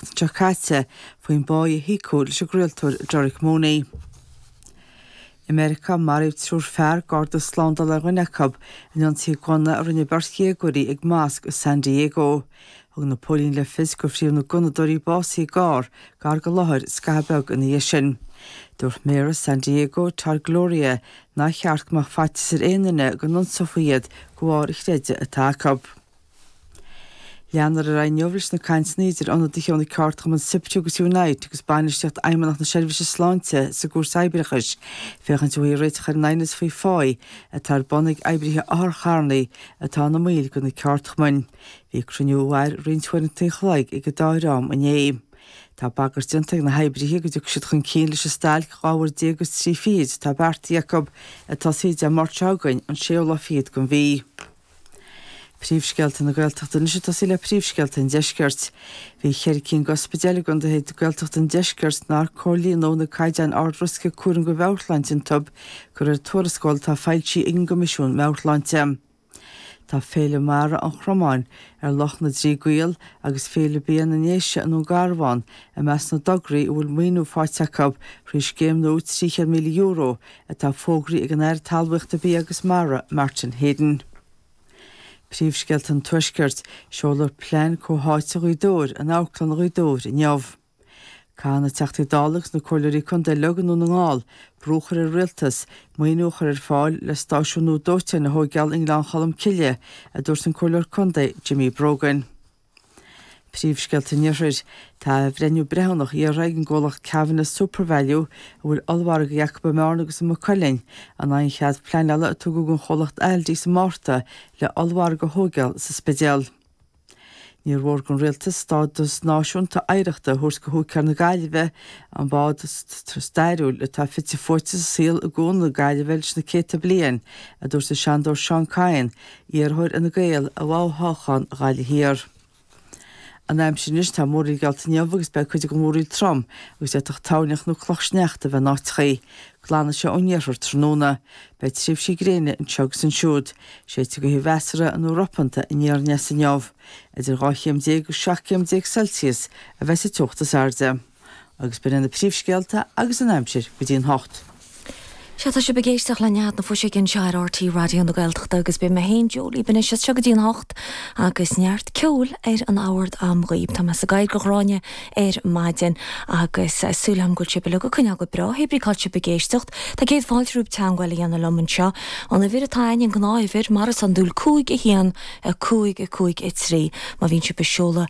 seo caite faoin bpá a híocadh leis an gcraoltóir Derek Mooney. I Meiriceá, maraíodh triúr fear, garda slándála ar dhuine acu, in ionsaí gunna a rinne beirt dhéagóirí ag mosc i San Diego. Thug na póilíní le fios gur fríothadh na gunnadóirí básaithe i gcarr gar don láthair scaitheamh beag ina dhiaidh sin. Dúirt méara San Diego, Todd Gloria, nár cheart go mbeadh faitíos ar aon duine go n-ionsófaí iad de bharr an chreidimh atá acu. Leanadh ar aghaidh inniu leis na cainteanna idir ionadaithe ó na ceardchumainn Siptu agus Unite agus bainistíocht Fheidhmeannacht na Seirbhíse Sláinte sa gCúirt Oibreachais féachaint an bhfaighfí réiteach ar an aighneas faoi phá atá ar bun ag oibrithe otharchairr atá ina mbaill de na ceardchumainn. Bhí cruinniú a mhair roinnt uaireanta an chloig ag an dá dhream inné. Tá bagairt déanta ag na hoibrithe go dtiocfaidh siad chun cinn leis an stailc 12 uair agus 3 fichid atá beartaithe acu, a thosóidh Dé Máirt seo chugainn, an séú lá fichead den mhí. Príomhscéalta na Gaeltachta anois ag tosaí le príomhscéalta an Deiscirt. Bhí ceithre cinn d'ospidéil i gContaetha Gaeltachta an Deiscirt nár chomhlíon na caighdeáin ardriosca cúraim do mheabhairshláinte anuraidh de réir tuarascáil atá foilsithe ag an gCoimisiún Meabhairshláinte. Tá Féile Mara an Chromáin, ar Loch na dTrí gCaol, agus Féile Bia na nDéise i nDún Garbhán i measc na dtograí a bhfuil maoiniú faighte acu thrí Scéim nua €300,000 atá fógraithe ag an Aire Talmhaíochta Bia agus Mara, Martin Heydon. Príomhscéalta an Tuaiscirt, Seoladh Plean Comhtháite Ghaoth Dobhair in Amharclann Ghaoth Dobhair inniu. Caithfidh na Teachtaí Dála agus na Comhairleoirí Contae uilig i nDún na nGall brú a chur ar an Rialtas maoiniú a chur ar fáil le stáisiún nua dóiteáin a thóigeáil i nGleann Cholm Cille, a dúirt an Comhairleoir Contae Jimmy Brogan. Príomhscéalta an Iarthair. Tá athbhreithniú breithiúnach iarrtha ag an gcomhlacht Kavanagh's SuperValu, a bhfuil ollmhargaí acu i mBearna agus i Maigh Cuilinn, in aghaidh an chead pleanála a tugadh don chomhlacht Aldi sa Márta le ollmhargadh a thóigeáil sa Spidéal. Níor mhór don rialtas stádas náisiúnta oidhreachta a thabhairt do húicéir na Gaillimhe, an bád stairiúil atá fite fuaite sa saol i gCuan na Gaillimhe leis na céadta bliain, a dúirt an Seanadóir Seán Kyne, Iarrthóir Fhine Gael i bhfo-thoghchán Ghaillimh Thiar. An aimsir anois, tá múraíl geallta inniu agus beidh cuid den mhúraíl trom agus d'fhéadfadh toirneach nó clocha sneachta a bheith in áiteachaí. Glanfaidh sé ón iarthar tráthnóna. Beidh tréimhsí gréine anseo agus ansiúd. Séidfidh gaoth mheasartha nó ropanta aniar aneas inniu. Idir 12 chéim agus 17 céim Celsius a bheas sa teocht is airde. agus b'in iad na príomhscéalta agus an aimsir go dtí an hocht. Sea, tá sibh ag éisteacht le Nead na Fuiseoige anseo ar RTÉ Raidió na Gaeltachta agus beidh mé féin, Joe Lee Binneas, anseo go dtí an hocht agus neart ceoil ar na bacáin agam dhaoibh. Tá mé sa gcathaoir do Ghráinne ar maidin agus súil agam go bhfuil sibh uilig ag coinneáil go breá, hé brí cá bhfuil sibh ag éisteacht. Tá céad fáilte romhaibh teagmháil a dhéanamh liom anseo ar an uimhir atá a'ainn, an ghnáthuimhir, mar is iondúil, 5 1 5 5 3 má bhíonn sibh ag seoladh